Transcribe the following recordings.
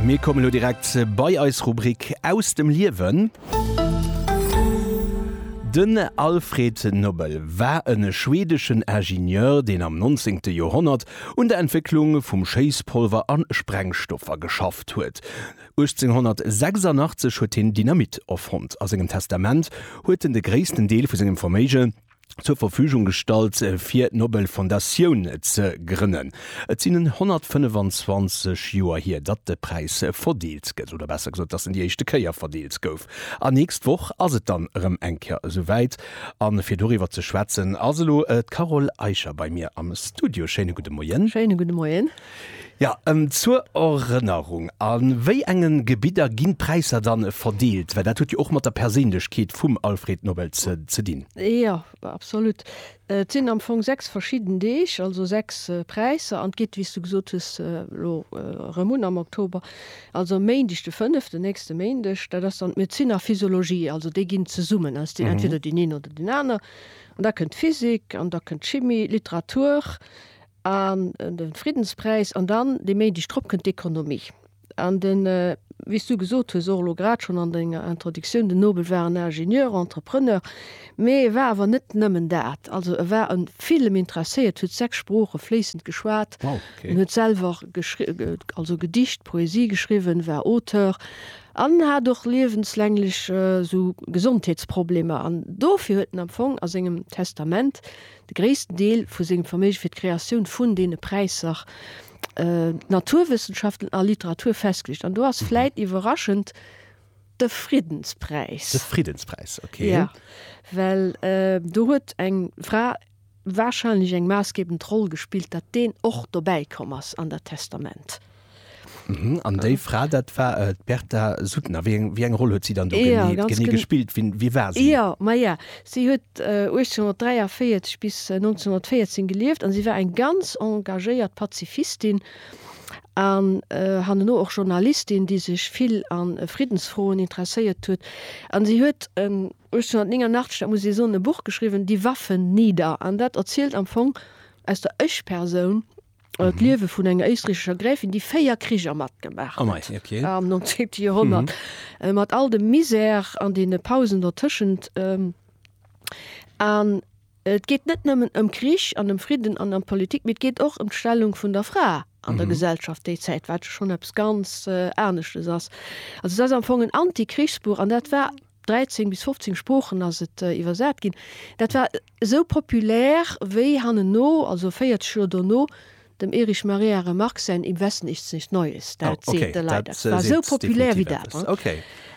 Mir kommen elo direkt bei eis Rubrik Aus dem Liewen. Den Alfred Nobel war e schwedeschen Ingenieur, deen am 19. Joerhonnert un der Entwécklung vum Schéisspolver a Sprengstoffer geschafft huet. 1886 huet hien Dynamit erfonnt. A sengem Testament huet en de gréissten Deel vu sengem Verméigen, zur Verfügung gestallt fir d'Nobelfondatioun ze grënnen. Et sinn 125 Joer hier, datt de Präis verdeelt gëtt, oder besser gesot, datt en déi éischte Kéier verdeelt gouf. An nächst Woch ass et dann erëm eng Kéier esouwäit. A fir doriwwer ze schwätzen ass elo d'Carole Eicher bei mir am Studio. Schéine gudde Moien. Schéine gudde Moien. Jo, ëm zur Erënnerung, a wéi enge Gebidder ginn d'Präisser dann verdeelt? Well dat huet jo och mat der Perséinlechkeet vum Alfred Nobel ze dinn. Jo, absolut. Et sinn am Fong sechs verschidden Deeg, also sechs Präisser, an et geet, wéi s du gesot hues, elo erëm un am Oktober. Also e Méindeg de fënneften, nächste Méindeg, dat ass dann d'Medezin a d'Physiologie, also déi ginn zesummen aus, deen entweder deen een oder deen aner. An da kënnt d'Physik an da kënnt d'Chimie, Literatur. an den Friddenspräis an dann de Méindeg drop kënnt d'Ekonomie an den wéi s du gesot hues och elo grad schonn an denger Introductioun, den Nobel war en Ingenieur, Entrepreneur, mee e war awer net nëmmen dat. Also e war e villem interesséiert, huet sechs Sprooche fléissend geschwat, en huet selwer geschri also Gedicht, Poesie geschriwwen, war Auteur an en hat och liewenslänglech esou Gesondheetsproblemer. An dofir huet en am Fong a sengem Testament de gréissten Deel vu sengem Verméige fir d'Kreatioun vun deene Präisser, Naturwëssenschaften a Literatur, festgeluecht. An do ass vläit iwwerraschend de Friddenspräis. De Friddenspräis, ok. Jo, well do huet eng Fra warscheinlech eng maassgebend Roll gespillt, datt deen och dobäi komm ass an dat Testament. An déi Fra dat war d'Berta Suttner. Wéi eng Roll huet si dann do genee gespillt? Wie war si? Jo, ma jo, si huet 1843 bis 1914 gelieft an si war eng ganz engagéiert Pazifistin an hanneno och Journalistin, déi sech vill a Friddensfroen interesséiert huet. An si huet 1889, dat muss ee soen, e Buch geschriwwen, Die Waffen nieder. An dat erzielt am Fong aus der Ech-Persoun, d'Liewe vun enger éisträichescher Gräfin, déi véier Kricher matgemaach oh huet okay. am 19. Joerhonnert, mhm. Äh, mat all dem Misär an dee Pausen dertëschent. Ähm, an äh, et geet net nëmmen ëm Krich an dem Fridden an der Politik, mit geet och ëm d'Stellung vun der Fra an der mhm. Gesellschaft déi Zäit wat schon abs ganz äh, aneschtes ass. Also dat am Fong en Antikrichsbuch an dat war 13 bis 15 Sproochen ass et iwwersat ginn. Dat war esou populär, wéi hanneno, also 40 Joer dono, dem Erich Maria Remarque säin Im Westen nichts nicht Neues, dat seet de Leit eppes. Dat war esou populär wéi dat.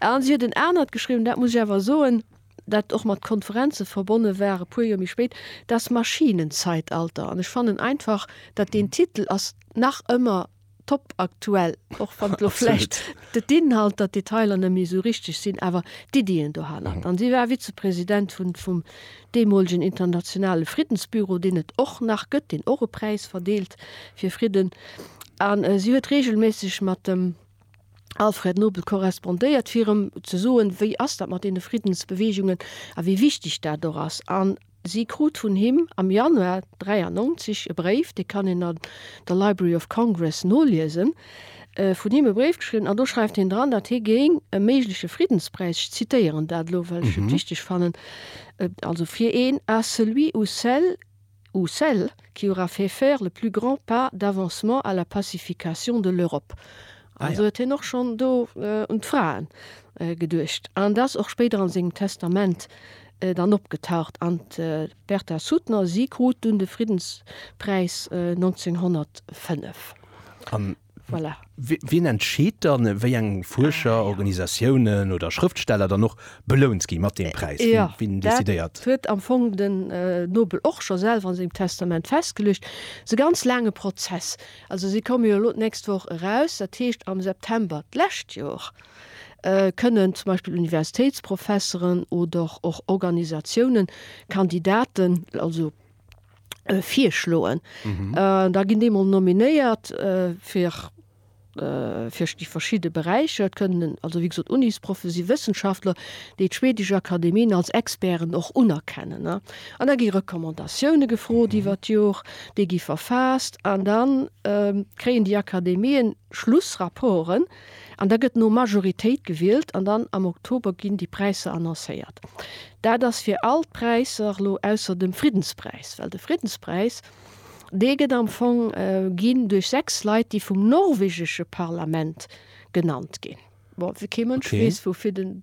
A si huet en anert geschriwwen, dat muss ech awer soen, dat och mat Konferenze verbonne war, e puer Joer méi spéit, Das Maschinenzeitalter. An ech fannen einfach, datt deen Titel ass nach ëmmer top aktuell, och wann elo vläicht d'Inhalter, d'Detailer net méi esou richteg sinn, awer d'Iddien dohannert. An si war Vizepresident vun vum deemolegen Internationale Friddensbüro, deen et och nach gëtt, deen och e Präis verdeelt fir Fridden. An si huet reegelméisseg mat dem Alfred Nobel korrespondéiert, fir em ze soen, wéi ass dat mat deene Friddensbeweegungen a wéi wichteg dat och ass. An. Si krut vun him am Januar 93 e Bréif, dee kann een an der Library of Congress noliesen, vun him e Bréif geschriwwen, an do schreift hien dran, datt hie géing e méigleche Friddenspräis, ech zitéieren dat elo, well ech et wichteg fannen, also fir een à celui ou celle ou celles qui aura fait faire le plus grand pas d'avancement à la pacification de l'Europe. Also huet hien och schonn do un d'Fraen geduecht. An et ass och spéider a sengem Testament dann opgetaucht an d'Bertha Suttner, si krut dunn de Friddenspräis 1905. An voilà. Wien entscheet dann, wéi eng Fuerscher, ah, ja. Organisatiounen oder Schrëftsteller dann och belount gi mat deem Präis? Ja, wien, wien decidéiert? Dat huet am Fong den Nobel och scho selwer an sengem Testament festgeluecht. Dat ass e ganz laange Prozess. Also si komme jo elo d'nächst Woch eraus, dat heescht am September d'lescht Jor. kënnen zum Beispill Universitéitsprofesseren oder och Organisatiounen Kandidaten also virschloen. Da ginn déi emol nominéiert fir fir déi verschidde Beräicher. Et kënnen also wéi gesot Unisproffen si Wëssenschaftler, déi d'schwedesch Akademien als Experten och unerkennen. An da gi Recommandatioune gefrot iwwer d'Jor, déi gi verfaasst an da kréien déi Akademien Schlussrapporten, An da gëtt no Majoritéit gewielt an dann am Oktober ginn déi Präisser annoncéiert. Dat ass fir all d'Präisser elo ausser dem Friddenspräis, well de Friddenspräis, dee gëtt am Fong ginn duerch sechs Leit, déi vum norwegesche Parlament genannt ginn. Bon, kee Mënsch weess, woufir den.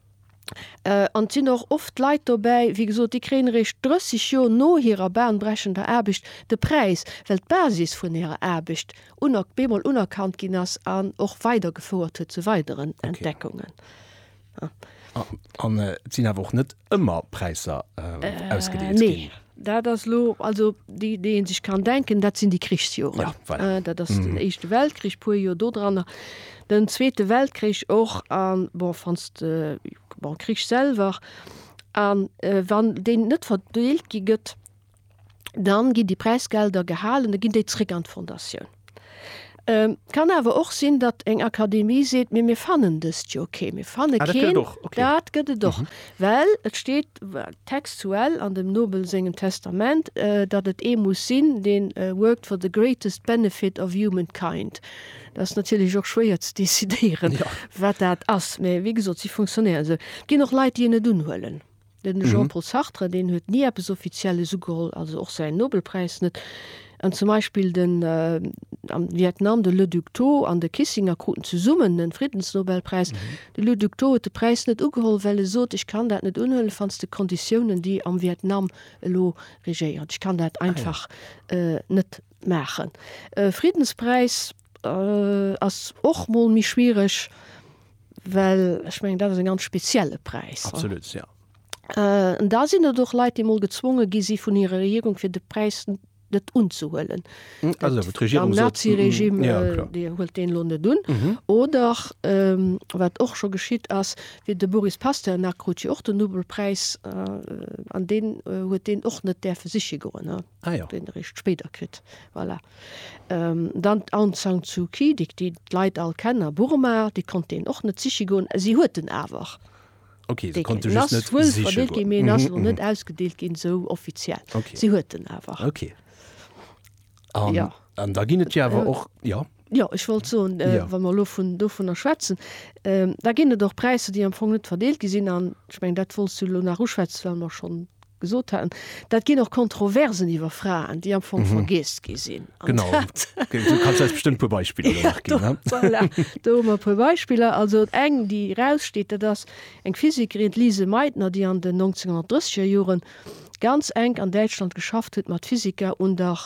An et sinn och oft Leit dobäi, wéi gesot, déi kréien eréischt 30 Joer no hirer bahnbrechender Aarbecht de Präis, well d'Basis vun hirer Aarbecht op eemol unerkannt ginn ass an och weidergefouert huet zu weideren Entdeckungen. An et sinn awer och net ëmmer Präisser ausgedeelt ginn. Dat ass elo, also déi déi ee sech kann denken, dat sinn déi Krichsjoren. Ja, voilà. Dat ass den Éischte Weltkrich, puer Joer dodranner, den Zweete Weltkrich och an bon wanns de bon Krich selwer an wann deen net verdeelt gi gëtt, dann ginn déi Präisgelder gehalen, da ginn déi zréck an d'Fondatioun. Et kann awer och sinn, datt eng Akademie seet, mee mir fannen dëst jo kee, mir fanne keen. Dat gëtt et och, well et steet textuell an dem Nobel sengem Testament, datt et ee muss sinn, deen worked for the greatest benefit of humankind. Dat ass natierlech och schwéier ze decidéieren, wat dat ass, mee wéi gesot, si funktionéieren esou. Et ginn och Leit, déi en net unhuelen. Den Jean-Paul Sartre, deen huet ni eppes Offizielles ugeholl, also och säin Nobelpräis net. An zum Beispill den, am Vietnam, de Le Duc Tho an de Kissinger kruten zesummen den Friddensnobelpräis. De Le Duc Tho huet de Präis net ugeholl, well e sot, ech kann dat net unhuelen, fands de Konditiounen, déi am Vietnam elo regéieren, ech kann dat einfach net maachen. Friddenspräis. Ass och mol méi schwiereg, well ech mengen dat ass e ganz spezielle Präis. Absolut, jo. An da sinn et och Leit, déi mol gezwonge gi si vun hirer Regierung, fir de Präis net unzehuelen. Am Naziregime, Dir huelt deen elo net un. Oder wat och scho geschitt ass, wéi de Boris Pasternak krut jo och den Nobelpräis, an deen huet deen och net däerfe siche goen. Ah jo. Deen eréischt spéider kritt. Voilà. Dann d'Aung San Suu Kyi, déi d'Leit all kennen a Burma, déi konnt een och net siche goen. Si huet en awer. Ok, se konnt en just net siche goen. En ass wuel verdeelt ginn, mee en ass elo net ausgedeelt ginn, esou offiziell. Si huet en awer. Ok. An da ginn et jo awer och, jo, Jo, ech wollt soen, wa mer elo dovunner schwätzen, da ginn et och Präisser, déi am Fong net verdeelt gi sinn. An ech mengen, dat wollts du elo nach uschwätzen, well mer schonn gesot haten, dat ginn och Kontroversen iwwer Fraen, déi am Fong vergiess gi sinn. Genau. Du kanns eis bestëmmt e puer Beispiller elo nach ginn. Voilà, do hu mer e puer Beispiller. Also eng, déi eraussteet, dat ass eng Physikerin, d'Lise Meitner, déi an den 1930er Joren ganz enk an Däitschland geschafft huet mat Physiker un der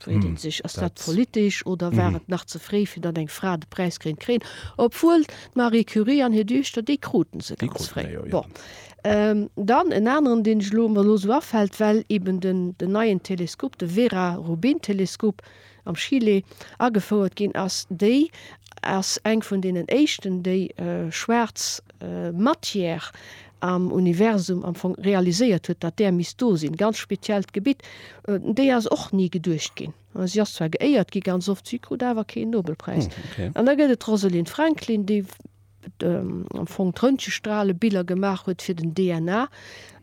Freet een sech, ass dat politesch oder war et nach ze fréi fir datt eng Fra de Präis kéint kréien, obwuel d'Marie Curie an hir Duechter, déi kruten se ganz fréi. Bon, dann en aneren, deen ech elo, mer elo esou afält, well eben den neien Teleskop, de Vera Rubin Teleskop am Chile agefouert ginn ass, déi ass eng vun deenen éischten, déi schwaarz Matière am Universum am Fong realiséiert huet, datt där misst do sinn, ganz speziell d'Gebitt, déi ass och ni geduecht ginn. Si ass zwar geéiert gi ganz oft, si krut awer keen Nobelpräis. An da gëtt et d'Rosalind Franklin, déi am Fong d'Röntgenstralebiller gemaach huet fir den DNA,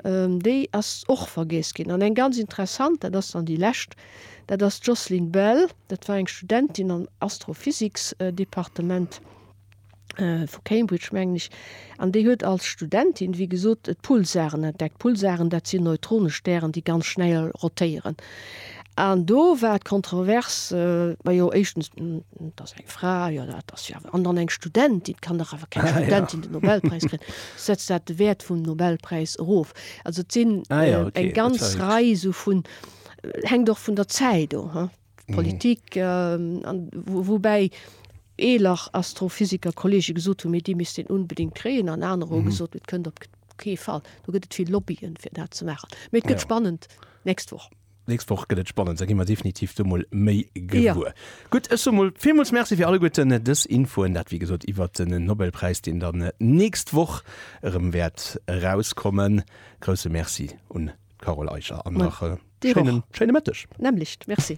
déi ass och vergiess ginn. An eng ganz interessant, dat ass dann déi lescht, dat ass d'Jocelyn Bell, dat war eng Studentin am Astrophysiksdepartement, vu Cambridge mengen ech, an déi huet als Studentin, wéi gesot, d'Pulsaren entdeckt. D'Pulsaren, dat sinn neutrone Stären, déi ganz schnell rotéieren. An do war d'Kontrovers, majo, éischtens, dat ass eng Fra, jo, dat ass jo awer, an dann eng Studentin, et kann dach awer keng Studentin den Nobelpräis kritt, setzt dat de Wäert vum Nobelpräis erof. Also et sinn eng ganz Rei esou vun, hänkt och vun der Zäit of. d'Politik, woubäi eeler Astrophysikerkolleege gesot hunn, mee dee misst een unbedéngt kréien, an anerer hu gesot, et kënnt op kee Fall. Do gëtt et vill Lobbyen, fir dat ze maachen. Mee et gëtt spannend d'nächst Woch. D'nächst Woch gëtt et spannend, da gi mer definitiv do mol méi gewuer. Gutt, ech soe mol villmools Merci fir alleguerten dës Infoen. Dat, wéi gesot, iwwert den Nobelpräis, deen dann d'nächst Woch erëm wäert erauskommen. Grousse Merci un. Carole Eicher an nach schéinen Mëtteg. Nämlech. Merci.